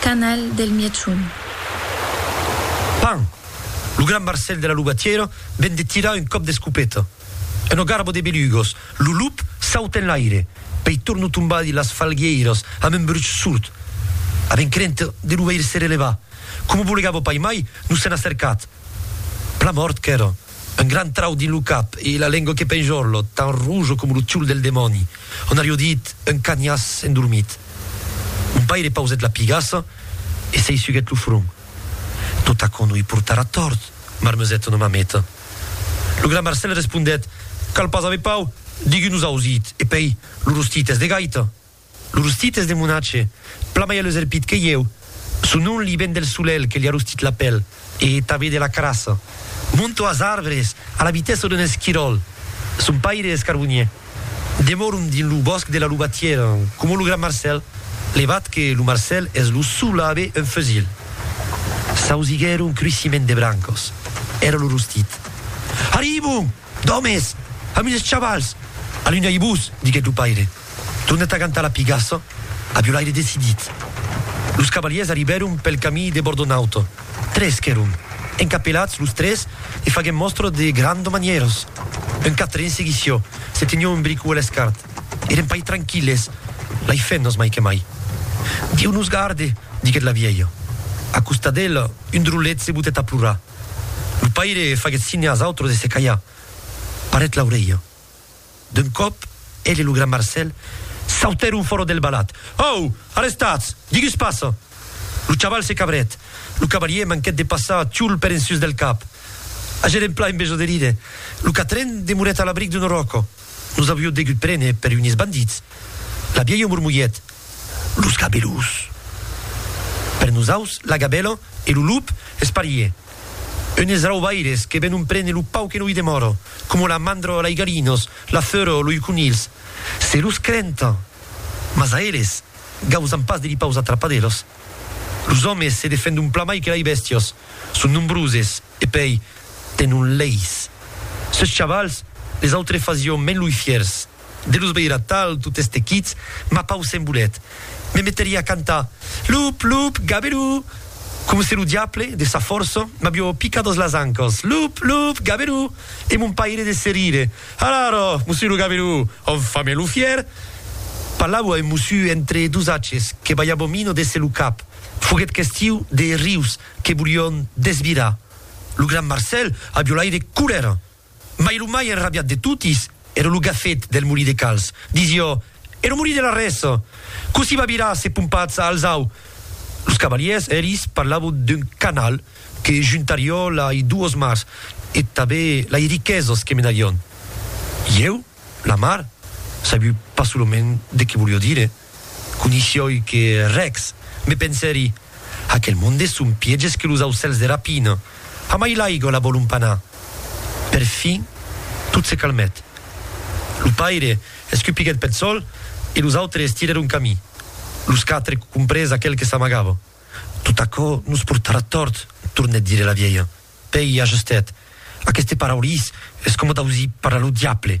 Canal del Mièchon. Pan! Lo gran Marcèl de la lugatièra ven de tirar un còp d'escopeta. Una garba de belugos, lo lup sauta en l'aire, pei torna tombar dins las falguièiras amb un bruch surt. Avèm crenta de lo veire se relevar. Coma bolegava paimai, nos s'en a cercat. Plan mòrt qu'èra. Un gran trau dins lo cap e la lengua que penjorlo, tan rojo coma lo tiol del demòni. On ario dit, un canhàs endormit. Mon paire pausèt la pigassa e se i suguèt lo front. Totacò no i portarà tòrt, marmesèt una mameta. Lo gran Marcèl respondèt, Cal pas aver pau, diguí-nos ausit, e pei, lo rostit es de gaita. Lo rostit es de monatge, plan mai aleselpit que ieu, son nom li ven del solelh que li a rostit la pèl e tanben de la carassa. Monto as arbres a la vitessa d'un esquiròl. Son paire es carbonier. Demòrom dins lo bòsc de la Lubatièra, coma lo gran Marcèl, levat que lo Marcèl es lo sol a aver un fusil. S'ausiguèron cruissiment de brancas. Èra lo rostit. Arribon! D'òmes! Ami des chavals! Alunhai-vos, diguèt lo paire, tornèt agantar la pigassa a violaire decidit. Los cavalièrs arribèron pel camí de Bordonaut. Tres qu'èron, encapelats los tres e faguèm mòstra de granda manièras. Un quatren seguís jo, se teniá un bric uèlh escart. Èrem pas tranquilles, lai fennas mai que mai. Dieu nos garde! diguèt la vièlha. A costat d'ela, un drolet se botèt a plorar. Lo paire faguèt signe as autres de se calhar. Parèt l'aurelha. D'un còp, ell e lo gran Marcèl sautèron fòra del balat. Au! Arrestatz! Digus passa! Lo chaval se cabrèt. Lo cavalier manquèt de passar Txul per en sus del cap. Agèren plan en besoderir. Lo quatren demorèt a l'abric d'una ròca. Nos avió degut prene per unes bandits, la vièlha mormolhèt, los gabelous! Per nosaus, la gabèla e lo lup es parier, unes raubaires que venon prene lo pauc que no i demòra, coma la mandra lai galinos, la feura loi conilhs, se los crenta! Mas a eles gausan pas de li paus atrapadelos. Los òmes se defendon plan mai que lai bèstias, son nombroses e pei tenon leis. Sos chavals, les autres fasión me lui fiers, de los veir atal tot estequits, ma pau se'n bolet, me meteria a cantar, Lup, lup, gaberú! Coma se lo diable, de sa força, m'avió picat as las ancas, Lup, lup, gaberú! E mon paire de se rire, Alara, mossu lo gaberú, on fa me lo fier? Parlavo a un mossu entre dos aches que balhava mina de se lo cap, foguet questiu de rius que volión desvirar. Lo gran Marcèl a violaire colèra, mai lo mai enrabiat de totis ère lo gafet del molí de Cals. Disió, E lo molí de Larrès? Cossí va virar se pompatz a Alzau? Los cavalièrs eris parlavon d'un canal que juntarió lai duos mars e tabé lai riquesos que menarión. Ieu, la mar, sabiu pas solament de que volió dire. Conishioi que rex, me pensèri, aquel monde son pièges que los aucèls de rapina. Amai l'aiga la vòlon panar. Per fin, tot se calmèt. Lo paire escupiguèt peth sol e los autres estirèron camí. Los quatre comprés aquel que s'amagava. Tot aquò nos portarà tòrt, tornèt dire la vielha. Pèi ajustèt, Aqueste paraulís es coma d'ausir parlar lo diable.